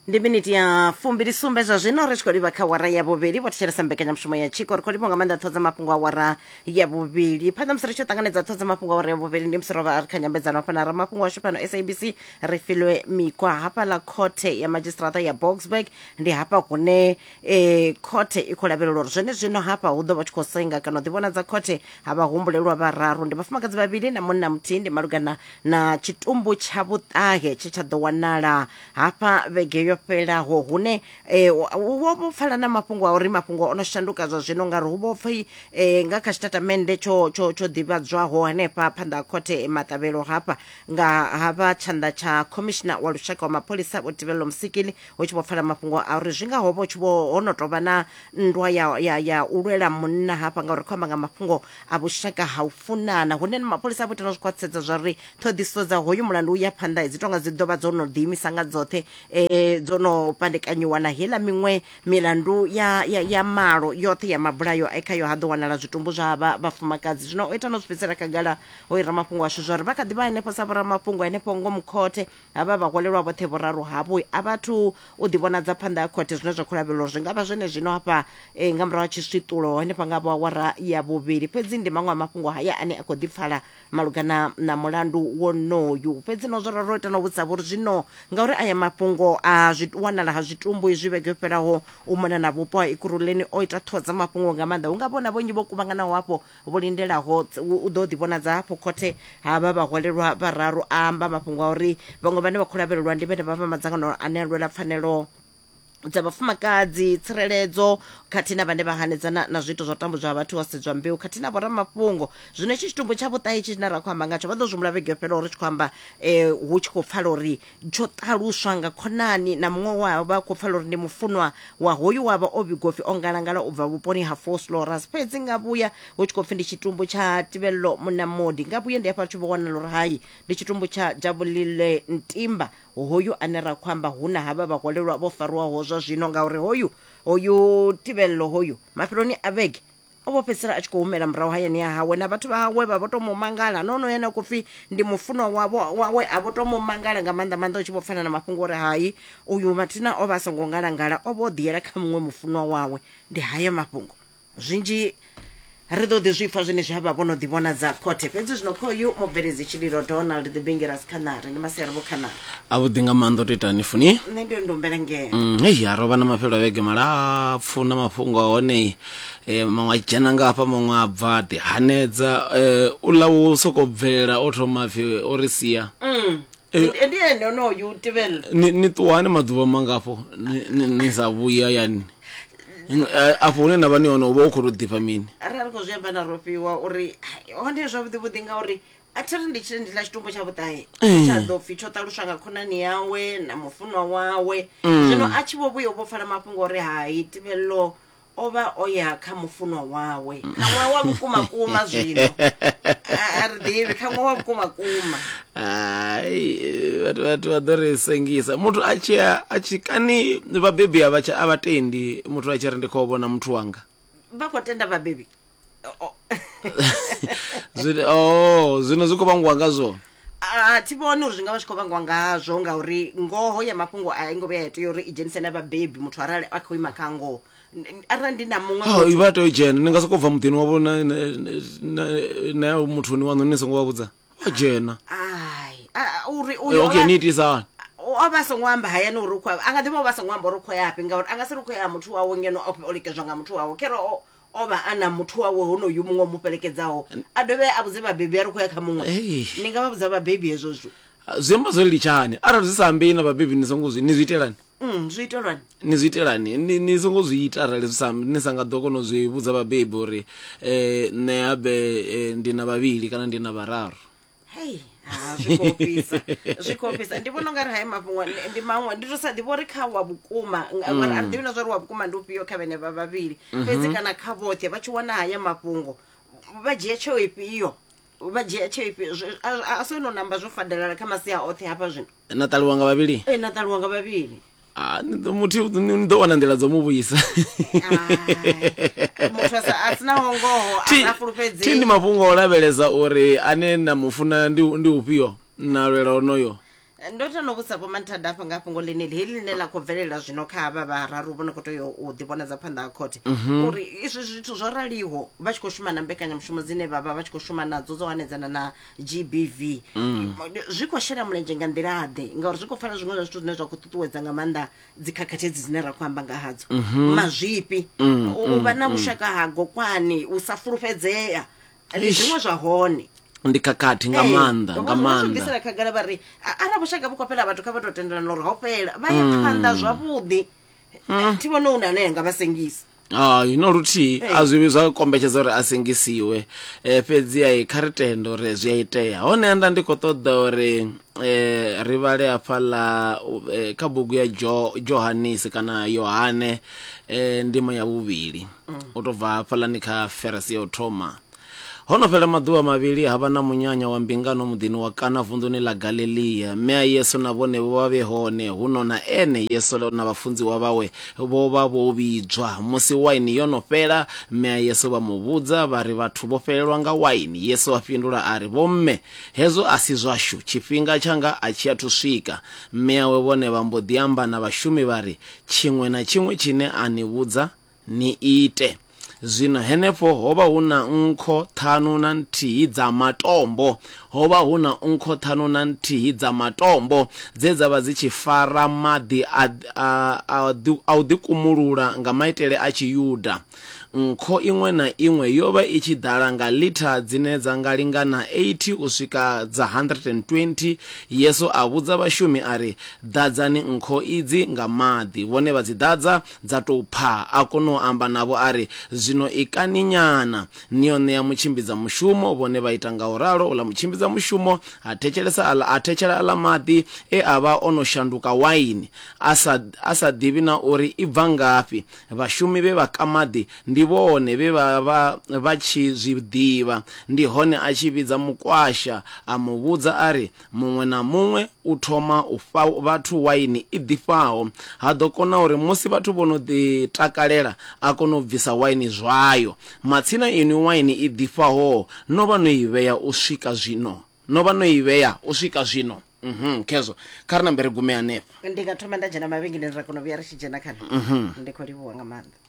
ndi miniti ya fumbili sumbe zwa zwino ri tshi khou livha kha wara ya vhuvhili vho thetshelesa mbekanyamushumo ya tshiko ri khou livha nga maanḓa ṱho dza mafhungo a wara ya vhuvhili phanḓa musi ri tshi ṱanganedza ṱho dza mafhungo a wara ya vhuvhili ndi musi ro vha ri kha nyambedzano hafha na ramafhungo washu fhano sabc ri filwe mikwa hafhaḽa khothe ya madzhisiṱiraṱa ya boxburg ndi hafha hune e khothe i khou lavhelelwa uri zwene zwino hafha hu ḓo vha tshi khou senga kana u ḓivhonadza khothe ha vha humbulelwa vhararu ndi vhafumakadzi vhavhili na munna muthihi ndi malugana na tshitumbu tsha vhuṱahe tshe tsha ḓo wanala hafha vhege yo fhelaho hune eh, wo wo pfala na mafhungo a uri mafhungo o no shanduka zwa zwino ngauri hu vho pfhi eh, nga kha tshitatamennde tsho tsho tsho ḓivhadzwaho hanefha phanḓa ha khothe eh, maṱavhelo hafha nga ha vha tshanḓa tsha khomishina wa lushaka wa mapholisa vho tibelelo musikili hu tshi vho pfala mafhungo a uri zwi nga ho vha tshi vho ho no tovha na nndwa ya, ya, ya u lwela munna hafha ngauri khou amba nga mafhungo a vhushaka ha u funana hune na mapholisa a vho ita na zwi khwaṱhisedza zwa uri ṱhoḓisiso dza hoyu mulandu u ya phanḓa dzi tonga dzi ḓovha dzo no ḓiimisa nga dzoṱhe um dzo no pandekanyiwa na heiḽa miṅwe milandu ya, ya, ya malo yoṱhe ya mabulayo e khayo ha ḓo wanala zwitumbu zwa vha vhafumakadzi zwino o ita no zwi fhedzisela khagala o i ramafhungo ashu zwa uri vha kha ḓi vha henefho sa vhoramafhungo henefho ngomu khothe Havha vhaholelwa vhoṱhe vhuraru havho a vha athu u ḓivhonadza phanḓa ha khothe zwine zwa khou lavhelelwa uri zwi nga vha zwenezwino hafha eh, nga murahu ha tshiswiṱulo henefha nga vhoawara ya vhuvhili. Fhedzi ndi maṅwe a mafhungo haya ane a khou ḓipfala malugana na mulandu wonoyu. Fhedzi no zwo ralo ita na u vhudzavho uri zwino ngauri aya mafhungo a zwi wanala ha zwitumbu izwi vhege yo fhelaho u mona na vhupo ha Ekurhuleni o ita ṱhoho dza mafhungo nga maanḓa hu nga vhona vhonyi vho kuvhanganaho hafho vhu lindelaho u ḓo ḓivhonadza hafhu khothe ha vha vhaholelwa vhararu a amba mafhungo a uri vhaṅwe vhane vha khou lavhelelwa ndi vhene vha vha madzangano ane a lwela pfanelo dza vhafumakadzi tsireledzo khathihi na vhane vha hanedzana na zwiito zwa u tambudzwa ha vhathu ho sedzwa mbeu khathihi na vhoramafhungo zwino itshi tshitumbu tsha vhuṱahe itshi tshine ra khou amba ngatsho vha ḓo zwimula vhege yo fhelaho ri tshi khou amba um hu tshi khou pfala uri tsho ṱaluswa nga khonani na muṅwe we a vha a khou pfala uri ndi mufunwa wa hoyu wa vha o vhigwa upfi o ngalangala u bva vhuponi ha foslorus fhedzi nga vhuya hu tshi khou pfi ndi tshitumbu tsha tibello munamodi nga vhuye ndi hafha tshi vho wanala uri hai ndi tshitumbu tsha jabulile ntimba hoyu ane ra khou amba hu na havha vhaholelwa vho fariwaho zwa zwino ngauri hoyu hoyu tibello hoyu mafheloni a vhege o vho fhedzisela a tshi khou humela murahu hayani ya hawe na vhathu vha hawe vha vho to mu mangala no no yena khou pfi ndi mufunwa wavho wawe a vho to mu mangala nga maanḓa maanḓa u tshi vho pfana na mafhungo uri hai uyu mathina o vha a songo ngalangala o vho ḓiyela kha muṅwe mufunwa wawe ndi hayo mafhungo zwinzhi ri ḓo ḓi zwi pfa zwine zwi havha vho no ḓi vhona dza khothe fhedzi zwino khoyu mubveledzi tshililo donald the bingeras khanare ndi masiari vho khanare a vhuḓi nga maanḓa u to itani funi nṋe ndi ndumbela ngeno Mm, hei a rovha na mafhelo a vhege malapfu na mafhungo a hone eh, maṅwe a dzhena nga hafha maṅwe a bva ḓi hanedza eh, u ḽa wo soko bvela o thoma pfi o ri sia Mm. Eh. Ndi- ndi ene onoyo u tevhelela ni ni ṱuwani maḓuvha mangafho ni- ni ni sa vhuya yani N- a- afho hune na vha ni hone u vha u khou tou ḓifha mini arali khou zwi amba na rofhiwa uri "Hai, hone zwavhuḓi vhuḓi ngauri a thi ri ndi tshile ndi ḽa tshitumbu tsha vhuṱahe Mm. tsha ḓo pfhi tsho ṱaluswa nga khonani yawe na mufunwa wawe Mm. zwino a tshi vho vhuya u vho pfala mafhungo uri hai tibelelo o vha o ya kha mufunwa wawe mm. kha ṅwaha wa vhukuma kuma zwino a ri ḓivhi kha ṅwaha wa vhukuma kuma hai vhathu vhathu vha ḓo ri sengisa muthu a tshi a tshi kani vhabebi a vha a vha tendi muthu a tshi ri ndi khou vhona muthu wanga vha khou tenda vhabebi Zwine- oh zwino zwi khou vhangiwa nga zwone a thi vhoni uri zwi nga vha zwi khou vhangwa ngazwo ngauri ngoho ya mafhungo a i ngo vhuya ya tea uri i dzhenise na vhabebi muthu arali a khou ima kha ngoho N- n- arali ndi na muṅwe Oh, muthu- vha tea u dzhena ni nga sokou bva muḓini wavho na- na- na- na ya muthuni waṋu ni songo vha vhudza vha dzhena ai a- a- uri Eh, uyo okay o ni vha- itisa hani o o vha a songo amba hayani uri u khou ya- a nga ḓi vha o vha a songo amba uri u khou ya fhi ngauri a nga si ri u khou ya ha muthu wawe ngeno o o likedzwa nga muthu wawe khere o o vha a na muthu wawe honoyu muṅwe o mu fhelekedzaho a dovhe a vhudze vhabebi a ri khou ya kha muṅwe Ei. ni nga vha vhudza vhabebi hezwo zwithu zwi amba zwo litshani arali zwi sa ambei na vhabebi ni songo zwi ni zwi itelani Mm, zwi itelwani ni zwi itelani ni, ni songo zwi ita arali zwi sa ambi- ni sa nga ḓo kona u zwi vhudza vhabebi uri um nṋe habe um ndi na vhavhili kana ndi na vhararu hei ha zwi khou ofhisa zwi khou ofhisa ndi vhona ungari hayi mafhungo ndi- ndi maṅwe ndi to sa ḓivha uri kha wa vhukuma nga- ngori a ḓivhi na zwa uri wa vhukuma ndi ufhio kha vhene vha vhavhili fhedzi kana kha vhoṱhe vha tshi wana haya mafhungo vha dzhia tsheo ifhio vha dzhia tsheo ifhio Zwi- a- a- a si ono namba zwo fadelala kha masia oṱhe hafha zwino na ṱaliwa nga vhavhili ee na ṱaluwa nga vhavhili Ah, ni ḓo- muthu ni ni ḓo wana nḓila dzo mu vhuisa Ah, muthu a sa- a sinaho ngoho Thi- a thi fulufhedzei ndi mafhungo o lavhelesa uri ane na mu funa ndi ndi ufhio na lwela onoyo ndo tano vhusa vho manthada afha nga fhungo ḽeneli heḽi ḽine ḽa khou bvelela zwino kha havha vhararu vho no khou tea u ḓivhonadza phanḓa ha khothe uri izwi zwithu zwo raliho vha tshi khou shuma na mbekanyamushumo dzine vha vha vha tshi khou shuma nadzo dzo hanedzana na gbv zwi khou shela mulenzhe nga nḓila-ḓe ngauri zwi khou fana zwiṅwe zwa zwithu zwine zwa khou ṱuṱuwedza nga maanḓa dzikhakhathi edzi dzine ra khou amba nga hadzo mazwifhi u u vha na vhushaka ha gokwani u sa fulufhedzea ndi Eish. zwiṅwe zwa hone ndi khakhathi nga Ee, maanḓa vho- nga vho zwi maanḓa bvisela khagala vha ri "A- arali vhushaka vhu khou fhela vhathu kha vha tou tendelana uri ho fhela vha ya phanḓa zwavhuḓi thi vhone u na ane anga vha sengisa hai no luthihi a zwi vhi zwa kombetshedza uri a sengisiwe um fhedzi a kha ri tende uri zwi a itea hone nda ndi khou ṱoḓa uri um ri vhale hafha ḽa eh, kha bugu ya jo johanisi kana yohane um ndimo ya vhuvhili u tou bva hafhaḽani kha ferasi ya u thoma Ho no fhela maḓuvha mavhili ha vha na munyanya wa mbingano muḓini wa Kana vunḓuni ḽa Galilia. Mme a Yesu na vhone vho vha vhe hone, huno na ene Yesu na vhafunziwa vhawe vho vha vho vhidzwa. Musi waini yo no fhela, mme a Yesu vha mu vhudza vha ri, Vhathu vho fhelelwa nga waini. Yesu a fhindula a ri, Vhomme, hezwo a si zwashu, tshifhinga tshanga a tshi athu swika. Mme awe vhone vha mbo ḓi amba na vhashumi vha ri, Tshiṅwe na tshiṅwe tshine a ni vhudza ni ite. Zwino henefho ho vha hu na nkho ṱhanu na nthihi dza matombo, ho vha hu na nkho ṱhanu na nthihi dza matombo dze dza vha dzi tshi fara maḓi a, a, a, a u ḓikumulula nga maitele a Tshiyuda. Nkho iṅwe na iṅwe yo vha i tshi ḓala nga litha dzine dza nga lingana 80 u swika dza 120. Yesu a vhudza vhashumi a ri, Ḓadzani nkho idzi nga maḓi. Vhone vha dzi ḓadza, Dza tou pfa, a kona u amba navho a ri, Zwino ikani nyana. Ni yo ṋea mutshimbidzamushumo. Vhone vha ita nga u ralo. Uḽa mutshimbidzamushumo a thetshelesa aḽa, a thetshela aḽa maḓi e a vha o no shanduka waini, a sa, a sa ḓivhi na uri i bva ngafhi. Vhashumi vhe vha ka maḓi ndi vhone vhe vha vha vha tshi zwi ḓivha. Ndi hone a tshi vhidza mukwasha a mu vhudza a ri, Muṅwe na muṅwe u thoma u fha vhathu waini i ḓifhaho. Ha ḓo kona uri musi vhathu vho no ḓi takalela a kone u bvisa waini zwayo. Matsina inwi waini i ḓifhaho no vha no i vhea u swika zwino? No vha no i vhea u swika zwino? Uhum, khezwo. Kha ri nambe ri gume hanefha. Ndi nga thoma nda dzhena mavhengeleni ra kona u vhuya ri tshi dzhena kha. Ndi khou livhuwa nga maanḓa.